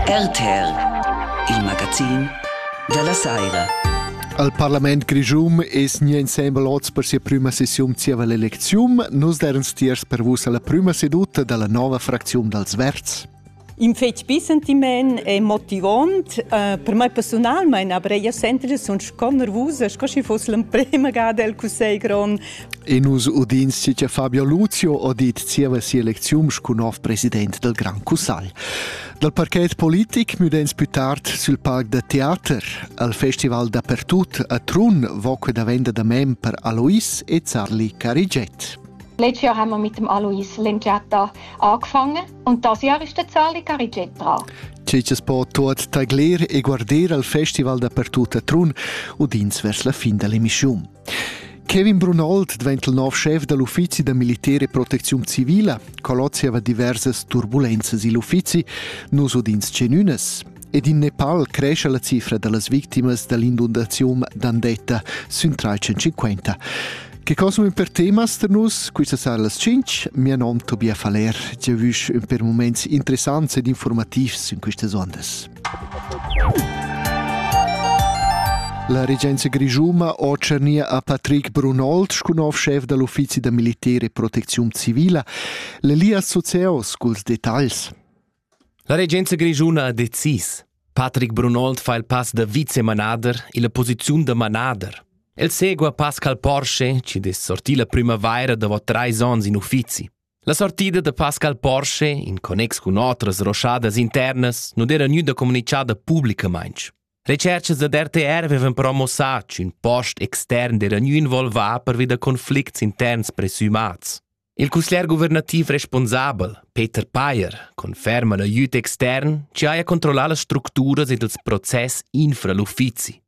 RTR, il magazin dalla saira. Al parlament grischun es nia insembel oz per sia prüma sessiun zieva l'elecziun. Nus deran stiers per vus alla prüma seduta dalla nova fracziun dals Verds. In fetg bi sentiment e motivant. Uh, per mai personalmein aber ella sentida sun sco nervusa, sco schi foss l'emprema gada el Cussegl grond E nus udins che Fabio Luzio ha dit zieva sia lecziun sco nov president del Grand Cussagl. Dal parchet politic müdens più tard sul parc da teater. Al festival dappertut a Trun voque da venda da mem per Alois e Zarli Cariget. Letztes Jahr haben wir mit dem Alois Lengiata angefangen und das Jahr ist der Zarli Cariget dran. Ceces po tuot tagler e guarder al festival dappertut a Trun, udins vers la fin dell'emissiun. Kevin Brunold diventa il nov schef da l'uffizi da militer e protecziun civila. Colozia va diversas turbulenzas igl uffizi. Nus udins genunas. Ed in Nepal cresce la cifra da las victimas da l'inundaziun d'Andetta sün 350. Che cosum per temas per nus? Questa sala las 5. Mia nom Tobias Faller. Giavüsch un per moments interessants ed informativs in questas ondas. La regenza grischuna otschernia a Patrick Brunold sco nov schef da l'uffizi da militer e protecziun civila l'Elias Sozeos culs detagls. La regenza grischuna ha decis. Patrick Brunold fa il pass da vicemanader illa posiziun da manader. El segua Pascal Porsche, ci dess sortir la primavaira davo trais ons in uffizi. La sortida da Pascal Porsche in connex cun otras roschadas internas non era gnüda comunichada publicamaing. Recerchas ad RTR avevan promossà ch'ün post extern era gnü involvà pervi da conflicts interns presumats. Il cusglier guvernativ responsabel, Peter Payer, conferma l'aiüt extern che haja controllà las structuras ed ils process infra l'uffizi.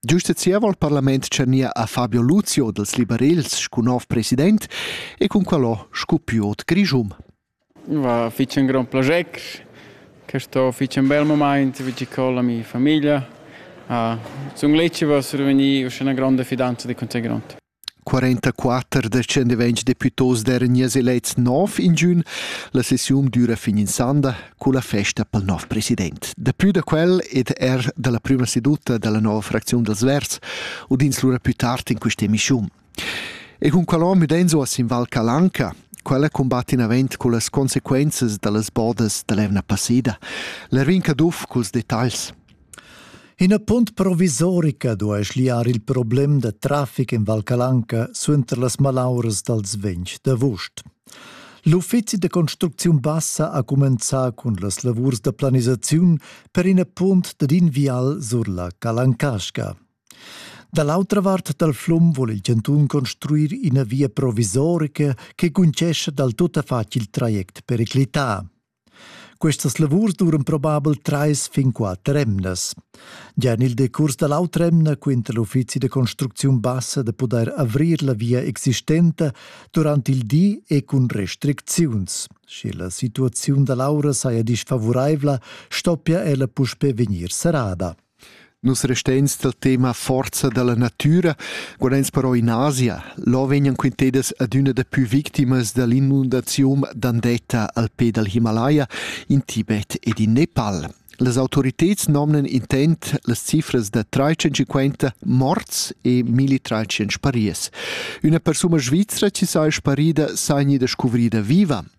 Giusta zieva il parlament tschania a Fabio Luzio dels liberels scu nov president e cun quellò scu piot grischum. Va fich ün grand plager, che sto fich ün bel moment vigi con la mia famiglia. Ah, sun leci va survegni uschè 'na gronda fidanza de Conte Grond. 44 descendent vegn deputos d'eran nies elets nov in giun. La sessiun düra fin in sanda cu la festa pel nov president. Depui da quel ed er dalla prima seduta dalla nova fracziun dels Verds udins lura più tard in questa emissiun. E cun qualon müdenzo a sin Val Calanca, quella combatt in avent cu las consequenzas dallas bodas dall'evna passida. L'Erwin Caduff culs detagls. Ina punt provisorica duai schliar il problem da traffic en Val Calanca suenter las malauras dals ventg d'avust. L'uffizi da construcziun bassa ha cumenzà cun las lavurs da planisaziun per ina punt dad in vial sur la Calancasca. Da l'autra vart dal flum vul il chantun construir ina via provisorica che cuncescha dal tuttafatg il traject periclità. Questas lavurs duran probabel trais fin quatter emnas. Gia en il decurs da l'autr'emna quinta l'uffizi da construcziun bassa da pudair avrir la via existenta durant il di e cun restricziuns. Sche la situaziun da l'aura saja disfavuraivla, stoppia ella puspè vegnir serrada. Nus resteins dal tema forza dalla natüra, qual eins però in Asia. Là vegnan quintedas adüna dapü victimas dall'inundaziun Dandetta al pe dal Himalaya, in Tibet ed in Nepal. Las autoriteds nomnan intent las cifras da 350 morts e 1300 spariers. Üna persuna svizra chi saja sparida s'ha gnida scuvrida viva.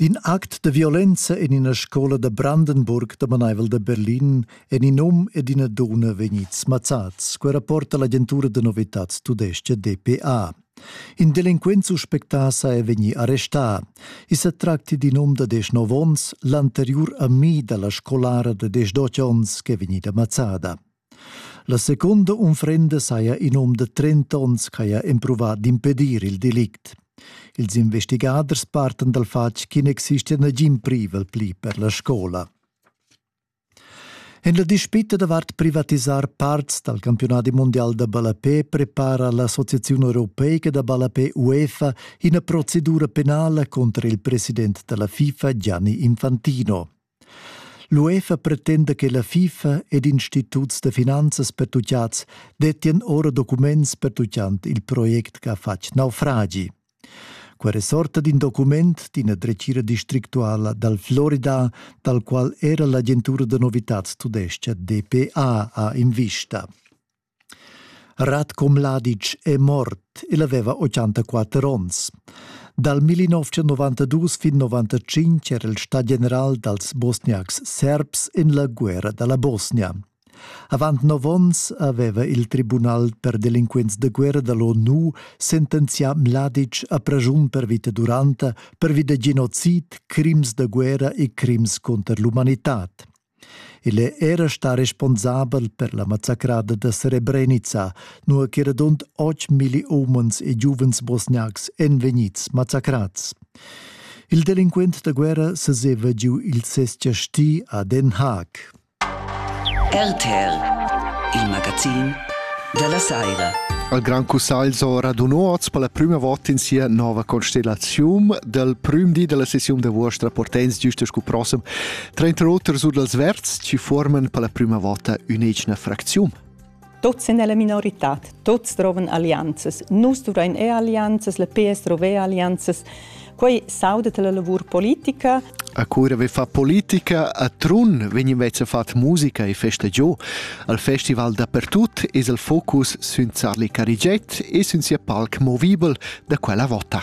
D'in act de violenza en ina scola da Brandenburg damanaivel da Berlin en in um ed ina donna vegnids mazzads, quei rapporta l'agentura de novitads tudesca DPA. In delinquent suspectà sa è vegni arrestà. I se tracti d'in um da 19 onns, l'anteriur ami dalla scolara de 18 onns che è vegnida mazzada. La secunda unfrenda saja in um da 30 onns ch'haja empruvà d'impedir il delict. Ils investigaders partan dal fatg ch'i n'existia nagin privel pli per la scola. En la dispita davart privatisar parts dal campionadi mondial da ballapé prepara l'Associazione Europeica da Ballapé UEFA ina procedura penala contro il president della FIFA Gianni Infantino. L'UEFA pretenda che la FIFA ed instituts da finanzas pertutgads dettien ora documents pertuccant il project che ha fatg naufragi. Quella sorta d'in document d'ina dretgira districtuala dal Florida, dal qual era l'agentura da novitads tudescha DPA ha invista. Radko Mladic è mort, el aveva 84 onns. Dal 1992 fin 95 era el stà general dals bosniacs serbs en la guerra da la Bosnia. Avant nov onns aveva il Tribunal per delinquents de guerra dall'ONU sentenzià Mladic a pragiun per vita duranta pervi da genocid, crims da guerra e crims conter l'umanitad. Il è era stà responsabel per la mazzacrada da Srebrenica, nua che radund otg milli umens e giuvens bosniacs èn vegnids mazzacrads. Il delinquent da guerra seseva giu il ses chasti a Den Haag. RTL, il magazin della Saira. Al Gran Cussagl so raduno oz per la prima volta in sia nova constellazione del prim di della sessione de vostra portens giusto scu prossem Tranter oter sur dals verds chi fuorman per la prüma vota ün'egna fracziun. Tuots sun nella minorità, tuots trovan allianzas. Nus duvrain e allianzas, le PS trova allianzas. Quei saudet la lavur politica. A cura ve fa politica a Trun vegn invece fat musica e festa giò. Al festival dappertut es il focus sün Zarli Carigiet e sün sia palc movibel da quella vota.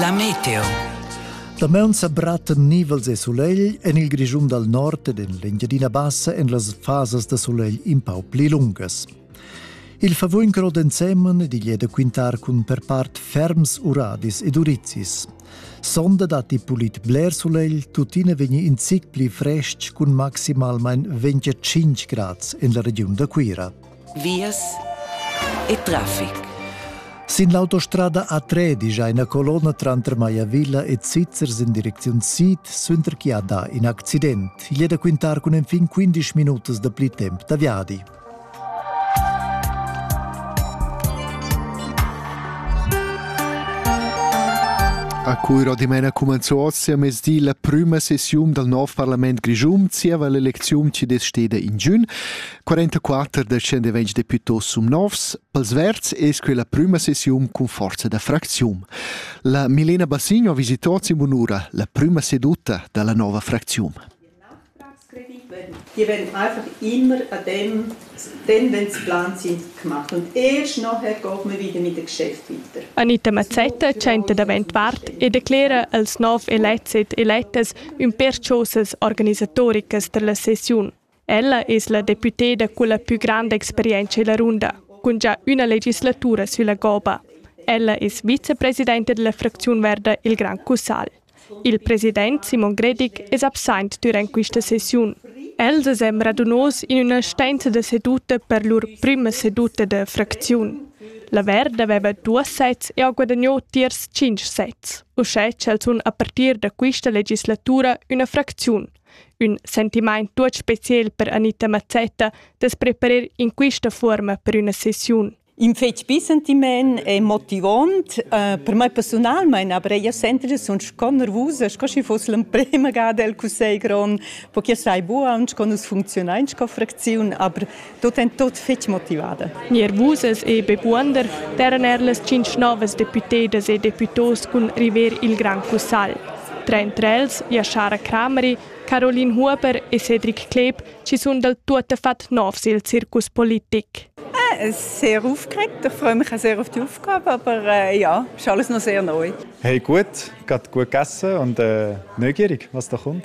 La meteo. Damaun sa brattan nivels e sulegl en il Grischun dal nord ed en l'Engiadina Bassa en las fasas da sulegl in pau pli lungas. Il favuin crod ensemen digl è da quintar cun per part ferms uradis ed urizis. Sonda datti pulit bler sulegl, tuttina vegni in zic pli frestg cun maximalmain 25 grads en la regiun da Cuira. vias e traffic. Sin l'autostrada A3 digia ina colonna tranter Maiavilla e Zizzers in direcziun sid, suenter chi ha dà in accident. Igl è da quintar cun enfin 15 minutas da pli temp da viadi. A Cuiro dimena cumanzo oz a mesdi la prüma sessiun dal nov parlament grischun zieva l'elecziun chi desteda in giun. 44 descendevents deputos sum novs, pels verds es quella prüma sessiun cun forza da fracziun. La Milena Bassigno visitò Zimunura la prüma seduta da la nova fracziun. Die werden einfach immer an dem Tendenzplan sind gemacht. Und erst nachher geht man wieder mit dem Geschäft weiter. Anita Mazzetta tschenta davent vart e declera als nov elets ed eletas ün perchosas organisatoricas per la sessiun. Ella es la deputeda culla pü granda experientscha illa runda, cun già üna legislatura sülla goba. Ella es vicepresidenta della fracziun verda Il Gran Cussagl. Il president Simon Gredig es absaint dürant quista sessiun. Els es e'm radunos in üna stanza da seduta per lur prüma seduta da fracziun. La Verda aveva duos sets e ha guadagnò tiers tschinch sets, uschè ch'el sun a partir da quista legislatura üna fracziun, Ün sentimaint tuot speciel per Anita Mazzetta da's preparer in quista fuorma per üna sessiun. In fetg bi sentiment e motivont. Uh, per mai personalmein aber ella sentida sun sco nervusa, sco schi foss l'emprema gada el cussegl grond, po che sai buca aunc co nus funzionain sco fracziun, aber tot en tot fetg motivada. Nier Vusas e Bebuonder terran er las tschintg novas deputedas e deputos cun river il Gran Cussagl. Tra entre els Jaschara Crameri, Caroline Huber e Cedric Kleeb ci sun dal tuottafat novs il circus politic. Äh, sehr aufgeregt. Ich freue mich auch sehr auf die Aufgabe, aber äh, ja, ist alles noch sehr neu. Hey, gut, gerade gut gegessen und äh, neugierig, was da kommt.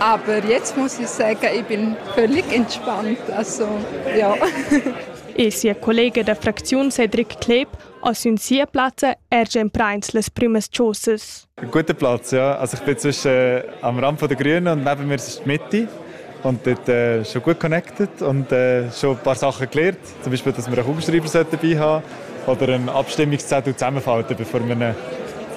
Aber jetzt muss ich sagen, ich bin völlig entspannt. Also, ja. e sia collega da fracziun Cedric Kleb ha sün sia plazza er già imprains las prümas chosas. Ein guter Platz, ja. Also ich bin zwischen äh, am Rand der Grünen und neben mir ist die Mitte. Und dort äh, schon gut connected und äh, schon ein paar Sachen gelernt. zum Beispiel, dass wir einen Raumstreiber dabei haben oder einen Abstimmungszettel zusammenfalten, bevor man ihn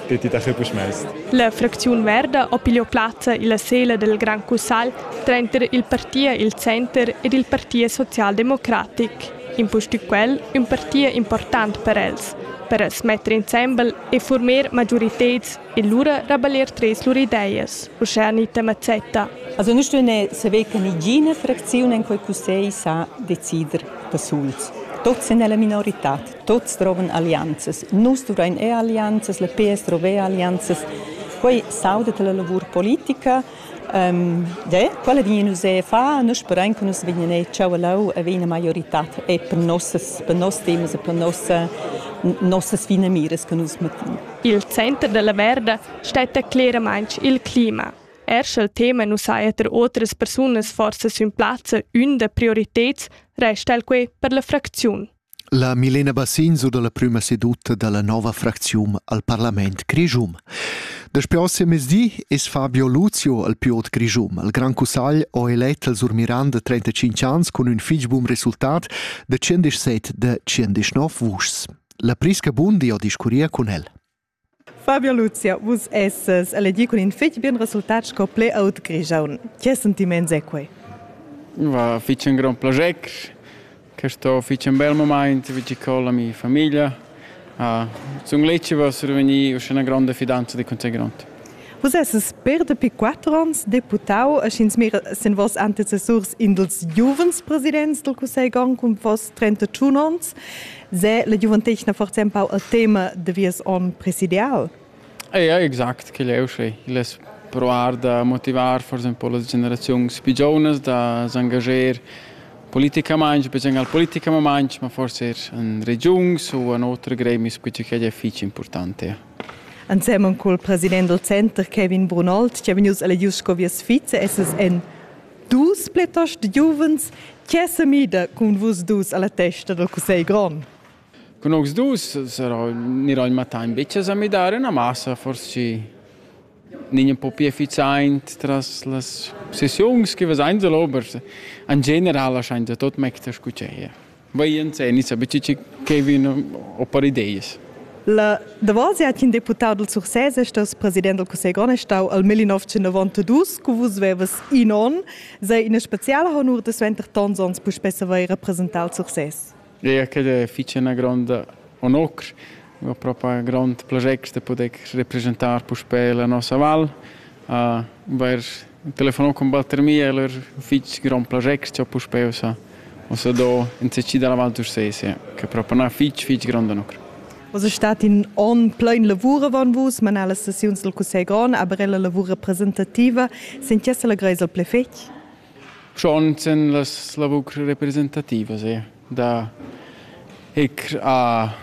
dort in den Kübel schmeißt. La fracziun Verda ha pigliò plazza illa sela del Grand Cussal tranter il Parti il Center ed il Parti Socialdemocratic. Impustü quel ün parti important per els, per smetter insembel e former majoriteds e lura rabellir treis lur ideas, uschè Anita Mazzetta. Also nu stun eir saver che nigiina fracziun in quel cussegl sa decider da suls. Tuots sun nella minorità, tuots drovan allianzas. Nus duvrain eir allianzas, la PS drova eir allianzas. Quai sauda la lavur politica De, quella vegnin nus a far, nus sperein che nus vegnin a tscheu leu a vegnir maioritad e per nossas per nos temas e per nossa nossas finamiras che nus mettin. Il center della Verda stetta cleramaintg il clima. Er sch'el tema nus ha eter otras persunas forsa sün plazza ün da prioriteds, resta el quei per la fracziun. La Milena Bassin sur dalla prüma seduta dalla nova fracziun al parlament grischun. Daspö oss'emezdi es Fabio Luzio al piot grischun. Il Gran Cussagl ho elet al Sur Miranda 35 ans cun ün fich bun resultat da 117 da 119 vuschs. La Prisca Bundi ho discurria cun el. Fabio Luzia, vus essas elegì cun in fitg bien resultat sco play-out grigiaun. Che sentiments è quai? Va fitg in grond plascher. Questo è fitg un bel moment vicino con la mia famiglia. Ah, sun leci per survenir una grande fidanza di Conte Grond. Vus esses per dapi quatter onns deputau e sch'ins mira sin vos antecessurs in dels giuvens presidents del Cussegl Grond cun vos 31 onns, se la giuventetgna forza empau el tema de vies onn presidial? Ja, exact, quel è uschè. Il es provar da motivar forsa un po las generaziuns più giovnas da s'engager politicamaing, becen al politicamaing, ma forse er in regiuns u in otre gremis, quei che è fitg important. Ja. Ensemen col president dal center Kevin Brunold, che è vegnius elegius sco via sviza, esses en dus pletos de giuvens, che se mida cun vus dus alla testa del Cussegl grond. Con vos dus sarò, nirò in matain becce a midare una massa, forse niño po più efficiente tras las sessioni che vas ein ober. In general lascian tot mecter scucceie. Vaienza e nissa betg che vin o per ideas. La davosia ch'in deputà dal Sursès è stà president dal Cussegl grond è stau al 1992, cu vus vevas in onn, sei ina speciala honur da suenter tons onns puspè savair representar il Sursès. Eu credo fece una gronda onor ho propa ün grond plascher da poder representar puspè la nossa val. Uh, vair telefonà cun batter mi e lur fich grond plascher cha puspè ussa ussa do in CC dalla Val d'Ursese, che propa na fich fich gronda nucr. Was ist dat in on plein lavure von vus, man alle sessiuns del Cussegl Grand, aber ella lavur representativa, sind jesse la greisel ple fetg? Schon sen las lavurs representativas e da ir a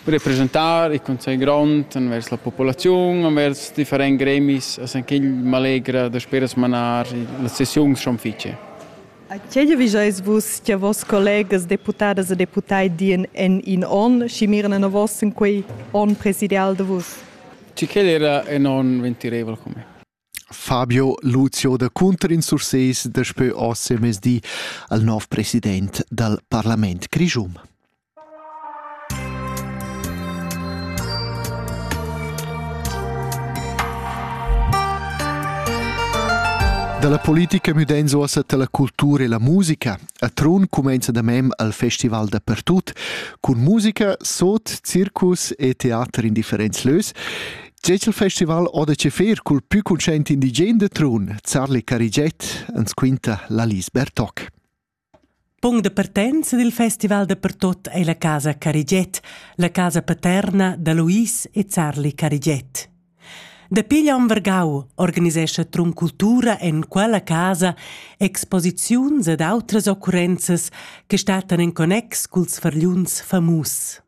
representar il Consiglio grond envers la popolaziun, envers differents gremis, a quel m'allegra da speras manar las sessiuns schon fice. A che giavischais vus che vos collegas deputadas e deputai dien en in onn, schi mirna na vos in quei onn presidial de vus? Ci quel era en onn ventirevel come. Fabio Lucio da Cunter in Sursés daspö oz semezdi al nouv president dal parlament grischun. Dalla politica müdenzo a la cultura e la musica. A Trun cumenza da mem al festival dappertut cun musica, sot, circus e teater in differents lös Tge il festival o da cefir cul pü cunscient indigen de Trun, Zarli Cariget, ens quinta la Lis Bertoc. Punct de partenza dil festival de pertot ei la casa Cariget, la casa paterna da Luis e Zarli Cariget. Dapi l'on vargau organisescha Trun Cultura en quella casa exposiziuns ed outras occurrenzas che statan en connex culs fargliuns famus.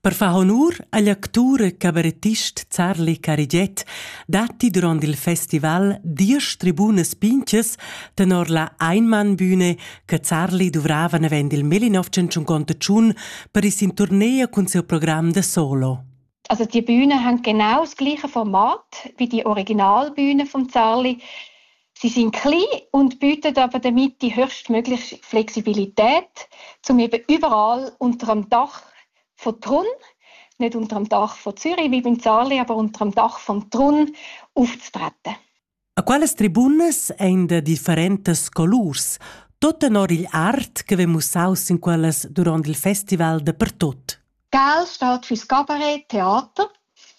Per far honur agl actur e cabarettist Zarli Carigiet datti durant il festival diesch tribunas pintgas tenor la Einmannbühne che Zarli duvrava navend il 1951 per ir sin turnea cun siu program da solo. Also die Bühne hängt genau das gleiche Format wie die Originalbühne von Zarli. Sie sind klein und bieten aber damit die höchstmögliche Flexibilität, um eben überall unter dem Dach von Trun, nicht unter dem Dach von Zürich wie beim Zarli, aber unter dem Dach von Trun aufzutreten. A quelles tribunas ein de differentas colurs, tot en or igl art che ve mussaus in quellas durant il festival de pertot. Gal stat für Scabaret, Theater.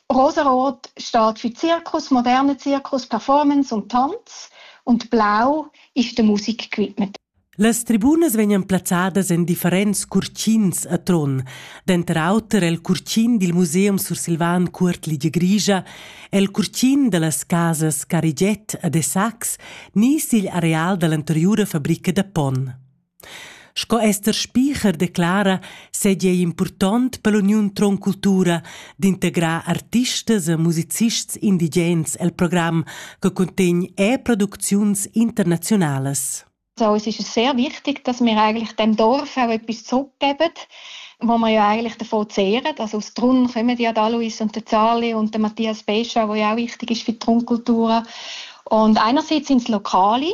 Rosarot stat für Zirkus, moderne Zirkus, Performance und Tanz. Und blau ist der Musikequipment. Las tribunas vegnan plazzadas en differents curtins a Trun, denter auter el curtin dil Museum sursilvan Cuort Ligia Grigia, el curtin dallas casas Cariget a Dessax ni sigl areal dall'anteriura fabrica da ponn. Sco Ester Spicher declara, seigi ei impurtont per l'uniun Tron Cultura d'integrar artistas e musicists indigens el program che cuntegn er producziuns internaziunalas. So, es ist sehr wichtig, dass wir eigentlich dem Dorf auch etwas zurückgeben, wo wir ja eigentlich davon zehren. Also aus Trun kommen ja der Alois und der Zali und der Matthias Bescher, der ja auch wichtig ist für die Trunkultur. Und einerseits sind es Lokale,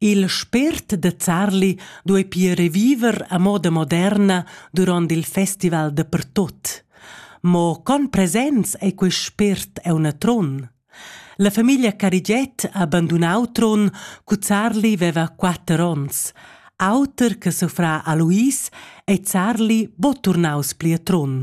Il spért da Zarli duei pia reviver a moda moderna duront il festival dapertut. Mo con presents ei quei spért auna tron? La famiglia Carigiet ha bandunau Tron cu Zarli veva quatter onns. Auter che suffrà a Luis ei Zarli bo turnaus pli a Tron.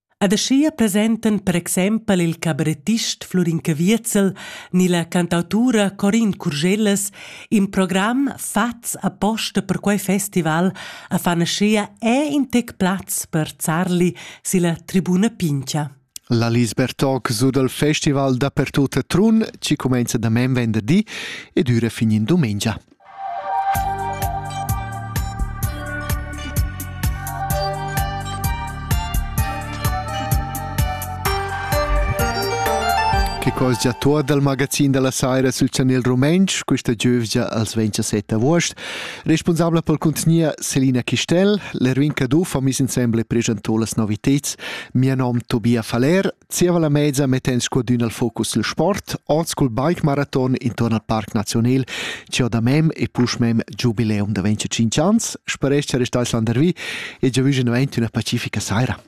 Ed aschia presentan per exempel il cabarettist Flurin Caviezel ni la cantautura Corin Curgellas in program fatgs aposta per quei festival a fan aschia è in tec plaz per zarli silla tribuna Pincha. La Lisbeth Talk su dal festival dapertut a Trun ci cumenza da men venderdi ed üra fin in dumengia. Che cos già tuor dal magazin da la saira sul chanel rumentsch, questa giövgia als 27 avuost. Responsabla pel contgnier Selina Chistel, l'Erwin Caduff ha mis insembel e preschantò las noviteds. Mia nom Tobia Faller, Zieva la mezza metten scudün al focus il sport, oz cul bike maraton intorn al Parc Nazional, ci ho da mem e push mem giubileum da 25 ans, speresch che restais landervi e giavüsch in 21 una pacifica saira.